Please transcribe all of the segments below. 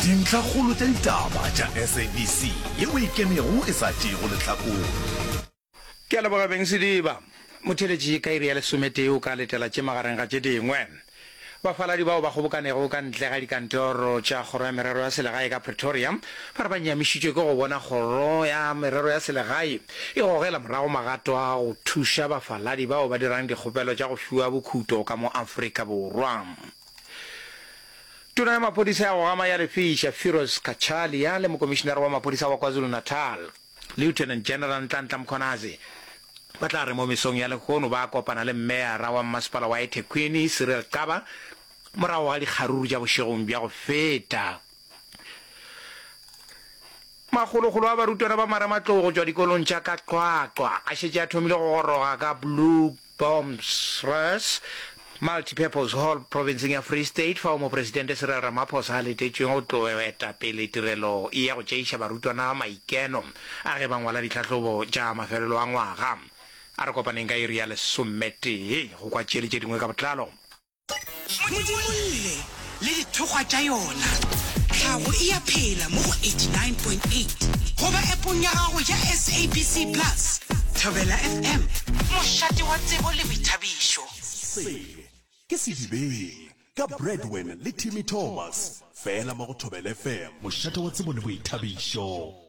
Dintlhakgolo tša ditaba tša SABC ye o e kenego e sa tšeego lehlakore. Ke a leboga Beng Sediba. Motheeletši ka iri ya lesometee o ka letela tše magareng ga tše dingwe. Bafaladi bao ba kgobokanego ka ntle ga dikantoro tša Kgoro ya Merero ya Selegae ka Pretoria ba re ba nyamišitšwe ke go bona Kgoro ya Merero ya Selegae e gogela morago magato a go thuša bafaladi bao ba dirang dikgopelo tša go fiwa bokhuto ka mo Afrika Borwa. Tona ya maphodisa ya go gama ya lefiša, Firoz Cachalia, le mokomišinare wa maphodisa wa KwaZulu-Natal, Lieutenant General Nhlanhla Mkhwanazi, ba tla re mo mesong ya lehono ba kopana le meyara wa mmasepala wa eThekwini, Cyril Xaba, morago ga dikgaruru tša bošegong bja go feta. Makgolokgolo a barutwana ba marematlou go tšwa dikolong tša ka Qwaqwa a šetše a thomile go goroga ka Blue Bombs Res, Multipurpose Hall provinseng ya Free State fao Mopresidente Cyril Ramaphosa a letetšwego go tlo eta pele tirelo ya go tšeiša barutwana maikeno a ge ba ngwala ditlhahlobo tša mafelelo a ngwaga. A re kopaneng ka iri ya lesometee go kwa tše le tše dingwe ka botlalo. Modimolle le dithokgwa tša yona. Tlhago e a phela mo go 89.8 goba appong ya gago ya SABC Plus. Thobela FM, mošate wa tsebo le boithabišo. Se ke Sedibeng ka Bradwen le Timmy Thomas, fela mo go Thobela FM, mošate wa tsebo le boithabišo.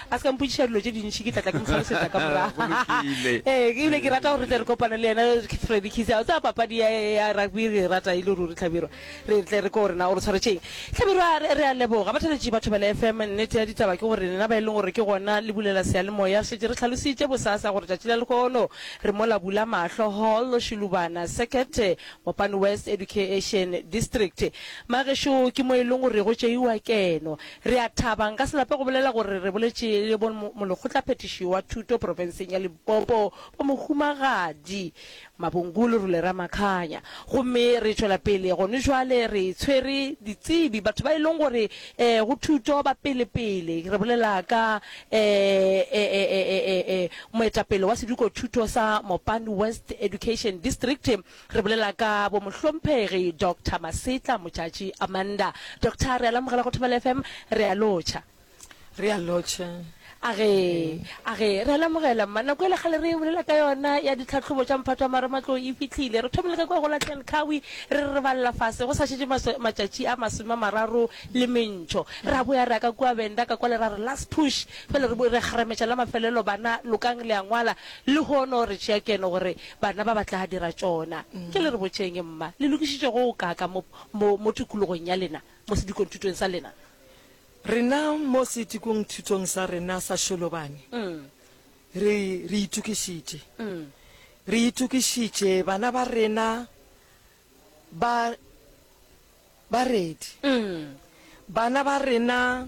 A se ka mpotšiša dilo tše dintši, ke tla tla ke mo hlalosetša ka morago. Go lokile. Ee, ke bile ke rata gore re tle re kopane le yena Freddy Kise. O tseba papadi ya ya rugby re e rata e le ruri Tlhabirwa. Re tle re ko gore na o re tshwaretšeng. Tlhabirwa re re a leboga. Batheletši ba Thobela FM, nnete ya ditaba ke gore lena ba e leng gore ke gona le bulela seyalemoya šetše re hlalositše bosasa gore tšatši la lehono re mola Bula Mahlo Hall, Shilubana Circuit, Mopane West Educa-ation District. Magešo ke mo e leng gore go tšeiwa keno. Re a thaba, nka se lape go bolela gore re boletše le bo Molekgotlaphethiši wa Thuto profenseng ya Limpopo, bo Mohumagadi Mabongulu Rule Ramakhanya. Gomme re tšwela pele gone jwale re tshwere ditsebi, batho ba e leng gore eh, go thuto ba pele-pele. Re bolela ka eh, eh, eh, eh, eh, eh, moetapele wa Seduko Thuto sa Mopani West Education District, Re bolela ka bomohlomphegi Doctor Masetla Motšatši Amanda. Doctor, re a le amogela go Thobela FM, re a lotšha. Re a lotšha. A ge, a ge, re a le amogela mma. Nako ele kgale re bolela ka yona ya ditlhahlobo tša mphato wa marematlou e fihlile. Re thomile ka kwa go la Tel Kawi, re re re balela fase go sa šetše maswe, matšatši a masome a mararo le mentšho. Ra boya ra ka kua Venda, ka kwale ra re last push. Bjale re bo re kgarametša la mafelelo, bana lokang le a ngwala. Lehono re tšea keno gore Bana ba ba tla dira tšona. Ke le re botšeng, mma, le lokišitše go go kaaka mo, mo, mo tikologong ya lena, mo sedikongthutong sa lena? Rena, mo sedikongthutong sa rena sa Sholobane, re, re itokišitše. Re itokišitše, bana ba rena ba, ba ready. Bana ba rena.